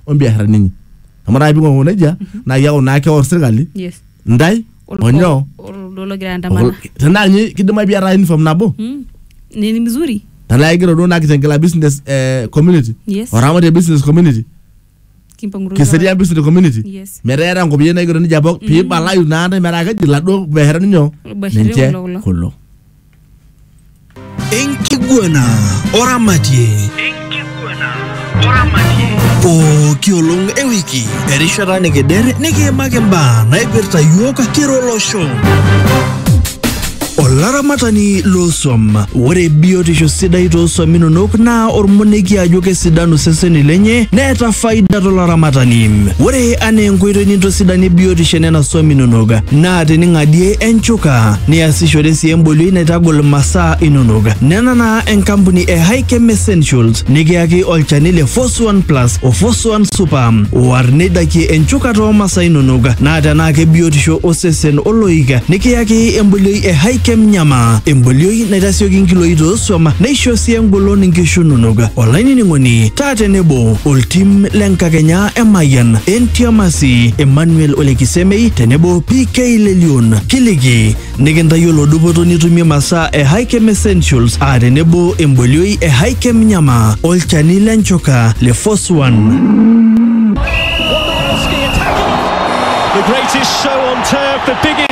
ombiasharani inyi amu taa ping'ong'u nejia naa iyaku naa keor sirkali yes ndai Olkuak- onyoo oldo logira andamana tenaa ninye kidimayu piata uniform nabo Mm. nini mzuri tenaa igira duo naa kitengela business eh, community Yes. oramatie business community kimpang'utu kiserian business community Yes. metaa iata nkopiyiani naigero nejia pok piibalayu naa ntae metaa keji laduo biasharani nyoo Biasharani ninche kulo, kulo. kulo Enkiguana oramatie. Pooki olong e wiki, erishata nikider nikiimaki mbaa naipirta yiok kira olosho. Olaramatani loosuam. Ore biotisho sidai toosuam inonok naa ormonekie ajo kesidanu seseni lenye neeta faida tolaramatani. Ore anaa enkoitoi nintosidanie biotisho enena suam inonok naa ata ening'adie enchuka niasishore sii embolioi naitagol masaa inonok nena naa enkampuni e Hikem Essentials nikiyaki olchani le Force One Plus o Force One Super oar neidakie enchuka too masaa inonok naa tenaa kebiotisho osesen oloik nikiyaki embolioi e Hikem Nyama embolioi naitasioki nkiloi toosuam neisho sii engolon nkishu inonok olainining'oni taa tenebo oltim le nkakenya Emayian, Entiamasi, Emmanuel Ole Kisemei tenebo PK Lelion. Kiliki nikintayiolo dupoto nitumie masaa e Hikem Essentials aa tenebo embolioi e Hikem Nyama, olchani le nchoka le Force One. The greatest show on turf, the biggest